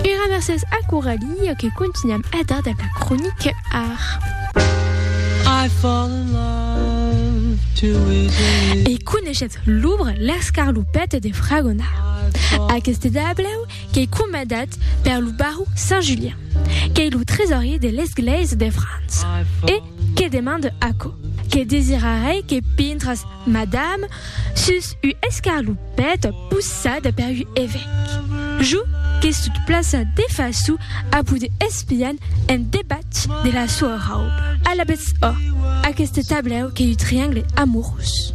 Era mercés a Coralie que continuam a dar dab la cronic art. I fall in love too easily. E coneishetz l'ubra L'escarlopète de Fragonard. Aqueste dablau qu'ei comandat per lo baró Saint Julien, qu'ei lo tresorier de l'Esglèisa de França, e que demande aquò, que desirarei que pintras Madame Sus ua escarlopèt possada per ua evèc. Jo que sot plaça de faço a poder espian en debat de la soa rauba. Alabètz ò, aqueste tablèu qu'ei ua triangle amorós.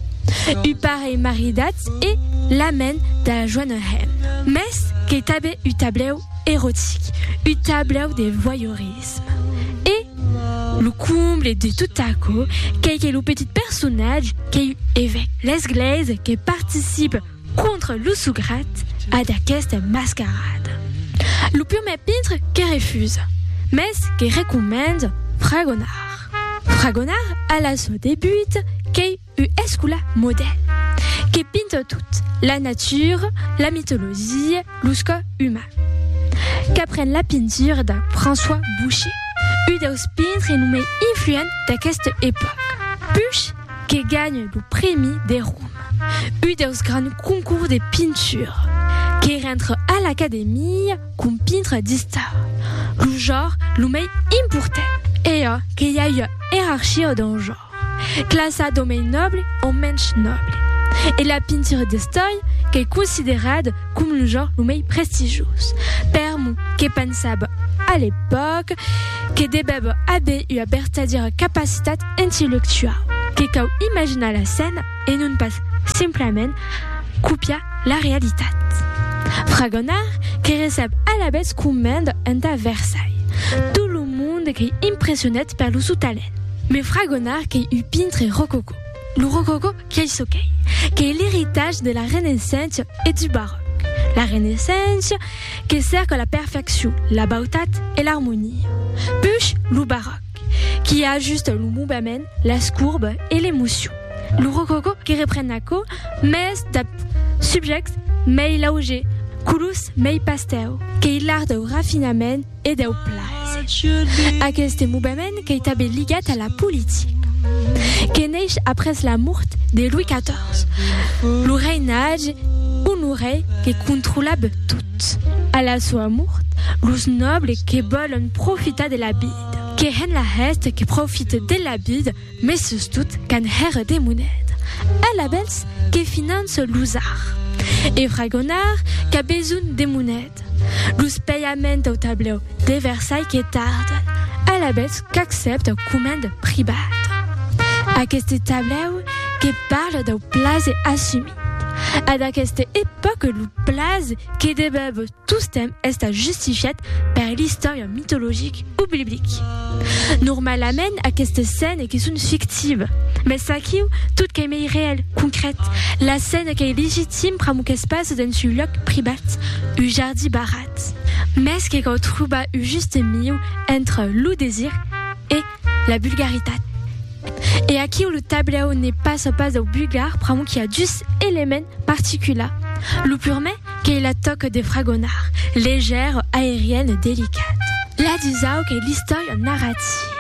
Ua parelh maridatz e la men da joana hèm. Mès qu'ei tanben ua tablèu erotic, ua tablèu de voyeurisme. L'egoïsme. E lo comble de tot aquò qu'ei que lo petit personatge qu'ei un evèc l'esglèisa que participe contra lo sograt a d'aquesta mascarada. Lo prumèr pintre que refusa, mès que recomenda fragonar. Fragonar a la sò debut qu'ei U escola modèl que pinta tot, la natura, la mitologia, los cò uman. Qu'apren la pintura de François Boucher, u deus pintre lo mei influent d'aqueste epòc. Puch que ganha lo prèmi de Roma, u deus grands concours de pintura. Que rentre a l'Academia com pintre d'istar, lo jor lo mei important. E a que i a ua erarchia dau jor. Classa d'omei nòble o mensh nòble. E la pintura d'estòia qu'ei considerada com lo genre lo mei prestigioz. Per mo, que pensava a l'epòca que devèva aver ua vertadièra capacitat intellectuau, que cau imaginar la scèna e non pas simplament copiar la realitat. Fragonard que recep alavetz comenda entà Versailles tot lo monde qu'ei impressionat per lo sou talent. Me fragonar qu'ei un pintre rococó. Lo rococó qu'ei çò qu'ei, qu'ei l'eritatge de la Renaissença e du Barròc. La Renaissença que cèrca la perfeccion, la bautat e l'armonia. Push lo Barròc qui ajusta lo movement, las courbes e l'emocion. Lo rococó que repren aquò, mès dab subjèctes mei laugers, colors mei pastèu, qu'ei l'art dau rafinament, e deu plaser. Aqueste movement qu'ei tanben ligat a la politica, que neish après la mort de Louis XIV, lo reinatge Honoré que controlab tot. A la soa mort, los nòbles que vòlon profitar de la vida, que hèn la hèsta que profite de la vida, Mes sustot qu'an hèr de monet. Alabèls que finan se l'usar. E fragonar qu'a besonh de monet. Los pèiaments dau tablèu de Versai que tarden. Alabèls qu'accèpt au coment pribat. Aqueste tablèu que parle dau plase assumit. Ad aqueste epòque lo plase que debèb Tostemp estat justifiat per l'istòria mitologic o biblic. Normalament aquestes scènes que son fictives, mès aquiu tot qu'ei mei reèl, concrèt, la scène qu'ei legitim pr'amor qu'es pas dens un lòc privat, un jardí barrat. Mès que cau trobar un juste mieu entre lo desir e la vulgaritat. E aquiu lo tablèu ne passa pas dau vulgar pr'amor qu'i a dus elements particulars, lo purmè, Qu'ei la tòca de fragonar, legèr, aerian e delicat. La dusau qu'ei l'istòria narrativa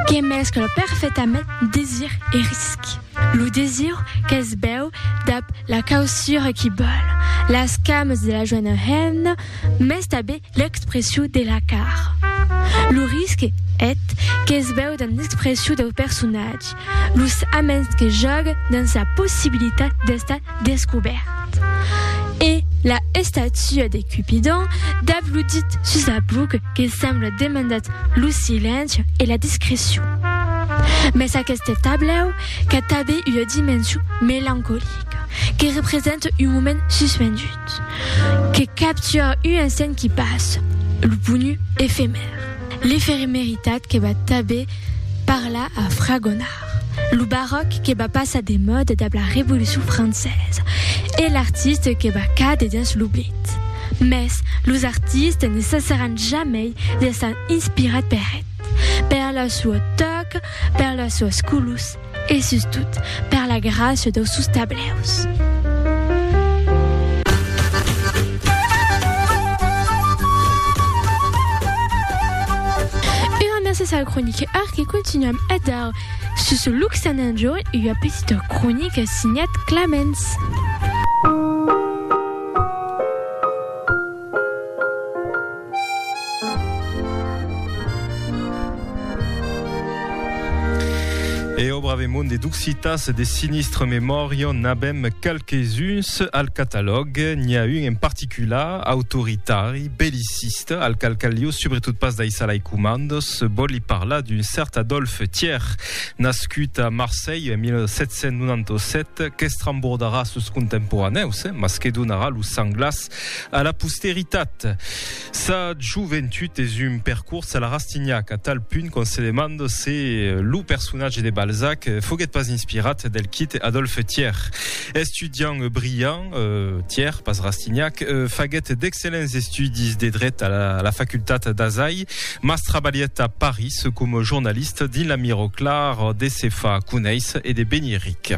que mescla perfetament desir e risc. Lo desir qu'es bèu dab la causura qui bòl, las cames de la joena hemna, mès tanben L'expression de la car. Lo risque et qu'es veu dans l'expression dau personatge, los aments que jògue dans sa possibilitat d'estar descobèrt. E la estatua de Cupidon dab lo dit sus la bouc que sembla demandat lo silenci e la discrecion. Mès aqueste tablèu qu'a tabé ua dimension melancolica, que represente un moment suspendut. Que capture un instant qui passe, lo ponu efemèr. L'efemeritat que va tanben parlar a Fragonard, lo baròc que va passar de mòda dab la Revolucion Francesa e l'artiste que va càder dens l'oblit. Mès los artistes ne cessaràn jamei d'estar inspirats per eth, per lo sò tòc, per las sòas colors, E sustot, per la gràcia dau sus tableus. Gràcias al croniquèr que continuam a dar sus Luxananjo ua petita cronica signat Clamens. E au brave monde d'Occitas de sinistre memòria n'abem qualques-uns al catalòg. N'i a un en particular, autoritari, belliciste, al qual caliu subretot pas daissar lai comandos. Vòli parlar d'un cert Adolphe Thier, nascut a Marselh en 1797, qu'estrembordarà sos contemporanèus, mas que donarà lo sang glas A la posteritat. Sa joventut es un percors a la Rastignac, a tal punt qu'on se demanda se lo personatge de Balzac foguèt pas inspirat del quite Adolphe Thiers. Estudiant brillant, Thiers, pas Rastignac, faguèt d'excellents estudis de dret a la facultat d'Azai, mas trabalhèt a Paris coma jornalista dins la Mirror Clar de se far conéisser e de venir ric.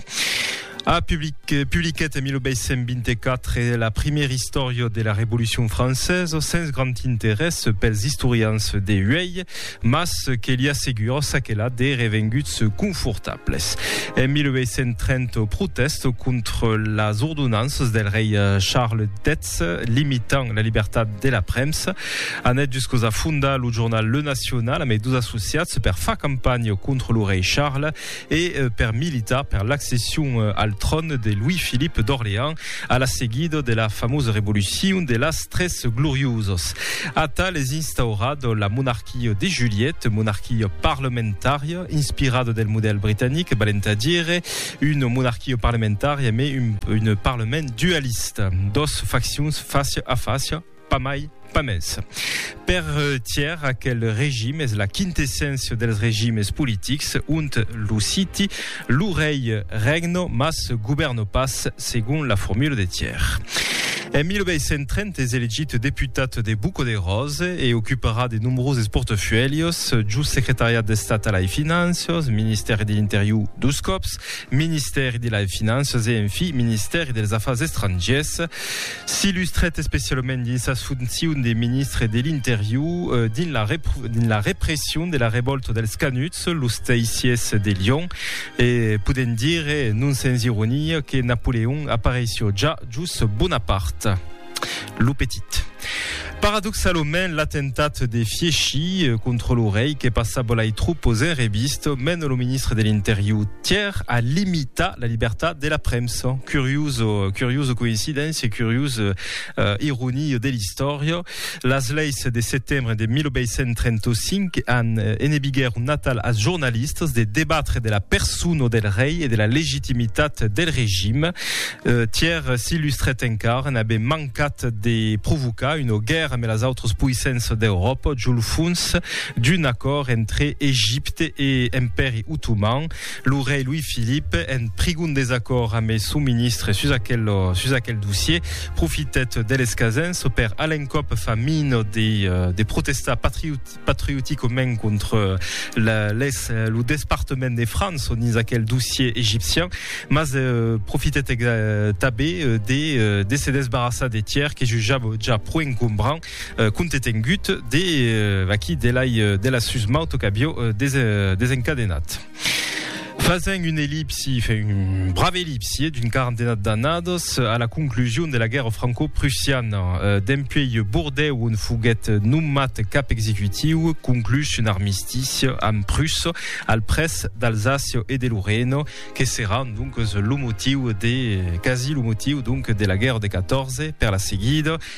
A publiquèt en 1824 la primièra istòria de la Revolucion francesa, sens grand interès pels istorians de uèi, mas que li assegura çaquelà de revenguts confortables. En 1830 au protèst contra las ordonanças del rei Charles X limitant la libertat de la premsa, anèt juscaus a fondar lo jornal Le National ambe dos associats per far campanha contra lo rei Charles. e per militar per l'accession al tròn de Louis-Philippe d'Orléans a la seguida de la famosa revolucion de las tres gloriosas. Atal es instaurat la monarquia de Juliette, monarquia parlamentària inspirada del modèl britanic, valent a dire una monarquia parlamentària mai un parlament dualista, dos faccions fàcia a fàcia, Pas mai, pas mès. Per Thiers, aquel regime es la quintesséncia dels regimes politics, ont lo siti, lo rei regno, mas govèrno pas, segon la formula de Thiers. En 1830 es elegit deputat de Buco de Rose e ocuparà de nombroses portafuèlhos, jos secretariat d'Estat a lai Finanças, ministèri de l'Interior dos còps, ministèri de lai Finanças e, en fi, ministèri dels Afars Estrangiers. S'illustrèt especialament dins sas foncions de ministre de l'Interior dins la dins la repression de la revòlta dels Canuts, los Teissiers de Lion, e podèm dire, non sens ironia, que Napoleon apareissió ja jos Bonaparte, lo petit. Paradoxalament, l'atemptat de Fieschi contra lo rei que passa bolai tropos en revista, mena lo ministre de l'Interior Thiers a limitar la libertat de la premsa. Curioso, curioso coincidéncia, curiosa uh, ironia de l'istòria. Las leis de setembre de 1835 an eh, enebiguèr un natal als jornalistas de debatre de la persona del rei e de la legitimitat del regime. Uh, Thiers s'illustrèt encara, n'avè mancat cat de provocar una guèrra amb las autras poissenças d'Euròpa jo lo fons d'un acòrd entre Egipte e Empèri Otoman. Lo rei Louis-Philippe, en prigon desacòrd amb son ministre sus aquel, sus aquel dossier, profitèt de l'escasença per a l'encòp fa mina de, de protestar patriot, patriotico men contre les le despartement de France on is aquel dossier égyptien mas profite tabé des des se desbarrassar des tiers que je ja ja pro encombrant compte est engut des vaquí de la de la susmauto cabio des desencadenat Fasent un ellipsi, fe un brave ellipsi eh, d'un quarantena d'annadas, a la conclusion de la guèrra franco-prussiana, dempuèi Bordèu on foguèt nomat cap executiu, conclús un armistici amb Prussa al près d'Alsàcia e de Lorena, que serà donc lo motiu de, quasi lo motiu donc, de la guèrra de 14, per la seguida,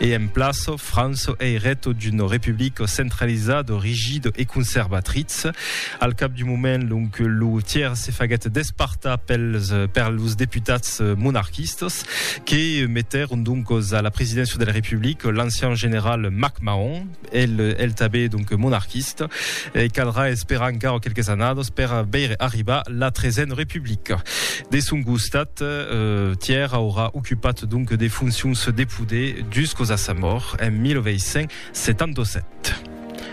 e en plaço Franço ei reto d'un republico centralizado, rigido e conservatritz. Al cap d'un moment, donc, lo tièr se faguèt despartar pels, per los deputats monarquistas que metèron, donc, a la presidéncia de la Republica l'ancian general MacMahon, El el tabé donc monarquista e caldrà esperar encara quelques annadas per veire arribar la tresen republica. De son costat, Tièr aurà ocupat donc de foncions de poder juscos a sa mòrt en 1877.